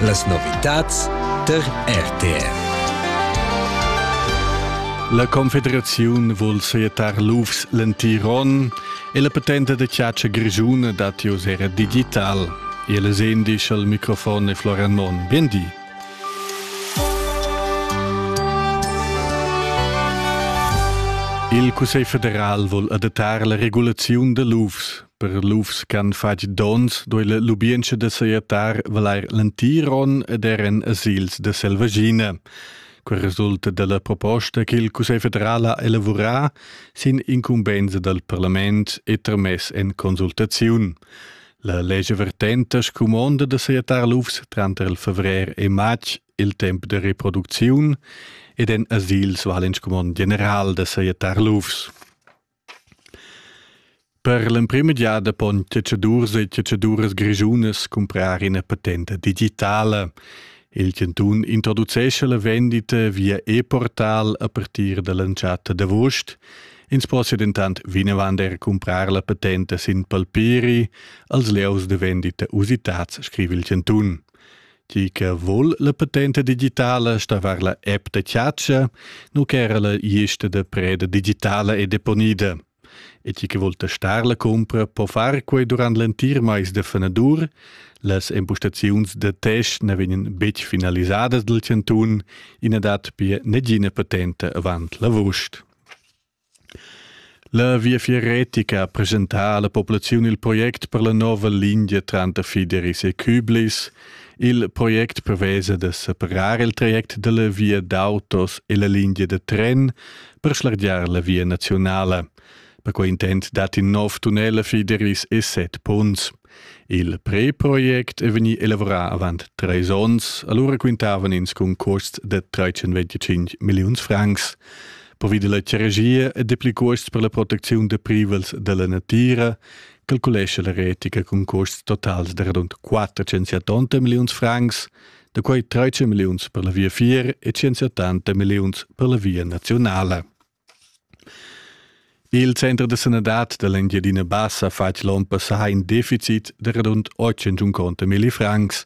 Las novitads tar RTR. La Confederaziun vul seietar lufs l'entiron e la patenta da chatscha grischuna dat jos era digital. El es indisch al microfon e Florian Mon. Bien di. Il Cussegl federal vul adattar la regulaziun da lufs. Per lufs ch'han fatg donns duei lubientscha da sajettar valair l'entiron ed er en asils da selvaschina. Quel resulta dalla proposta che il Cussegl federal ha elavurà sin incumbensa dal parlament e tramess en consultaziun. La legge vertenta scumonda da sajettar lufs tranter il fevrer e matg il tempo de reproducziun ed en asils val in scumond general da sajettar lufs. Per l'emprema giada pon chatschadurs e chatschaduras grischunas cumprar ina patenta digitala. Il chantun introducescha la vendita via e-portal a partir dall'entschatta d'avust. Ins possia dentant vinavant er cumprar la patenta sin palpiri als lieus da vendita usitads, scriva il chantun. Ti che vul la patenta digitala stavar la app da chatschia, nu ch'era la iesta da preda digitala e deponida. E ti che vul testar la cumpra po far quei durant l'entir mais de fenadur. Las empostaziuns da test ne vegnan betg finalisadas dal cantun, ina dat pia negina patenta avant l'avust. La Viafier retica ha presentà alla populaziun il project per la nova lingia tranter Fideris e Küblis. Il project prevesa da separar il traject dalla via d'autos e la lingia da tren per schlargiar la via nazionala. Per quei intent dat in nov tunnel a Fideris e set ponns. Il preproject è vegnì elavurà avant trais onns, alura quintavan ins cun cuosts da 325 milliuns francs. Pervi da la ceregia e dapli cuosts per la protecziun da privels da la natira calculescha la retica cun cuosts totals da radund 480 milliuns francs, da quai 13 milliuns per la viafier e 180 milliuns per la via nazionala. Il center da sanadad da l'Engiadina Bassa ha fatg l'onn passà in deficit da radund 850 milli francs.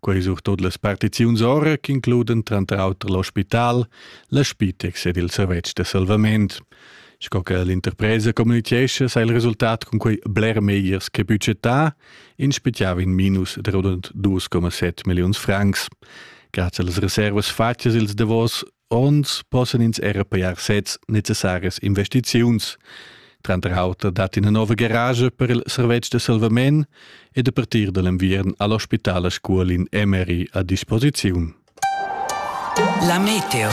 Quai surtut las partiziuns ora ch'includan tranter auter l'ospital, la Spitex ed il servetsch da salvament. Sco che l'interpresa communitgescha, sa il resultat cun quei bler megliers che budgetà, in speziava in minus da rund 2,7 milliuns francs. Grazie alle riservas fatgas ils davos Onns possan ins era pajar sez necessarias investiziuns. Tranter auter dat ina nova garage per il servetsch da salvament ed a partir da l'enviern ha l'ospital a Scuol in MRI a disposiziun. La meteo.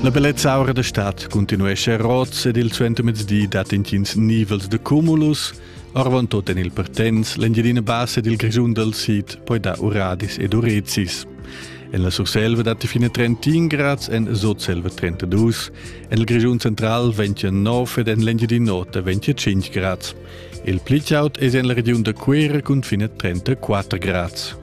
La bellezza aura da stad continuesce a Roz ed il suentermezdi dat intgins nivels de cumulus Arvantut en il Pertens, l'Engiadina Bassa ed il Grischun dal Sid poi dar uradis ed urezis. En la Surselva datti fine 31 grads, en Sotselva 32, en il Grischun central 29 ed en l'Engiadina Nota 25 grads. Il pli chaud è en la regiun da Cuera cun fine 34 grads.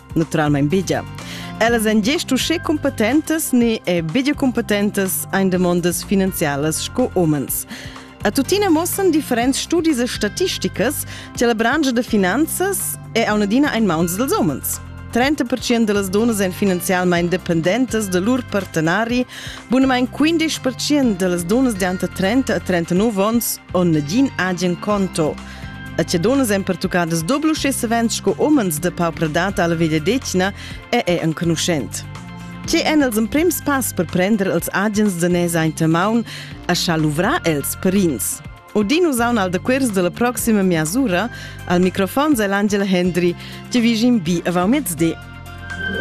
naturalmein bigia. Ellas èn gest uschè competentas ni e bigia competentas ein demondas finanzialas sco umens. A tuttina mossan differents studis e statisticas che la branca da finanzas è a un'adina in mauns dels umens. 30% de las donas èn finanzialmein dependentas de lur partenari, bunamain 15% de las donas de ante 30 a 39 ans on nagin agen conto. A cedonas èn pertuccadas doblusch e savens sco umens de pauper dat alla vegliadetgna e è enconuschent. Tge èn els emprims pass per prender els agens de nes aint maun a scha luvrar els perins? Udin usaun al dequers della proxima miasura, al microfon è l'Angela Hendry, che vigin bi avant mezdi.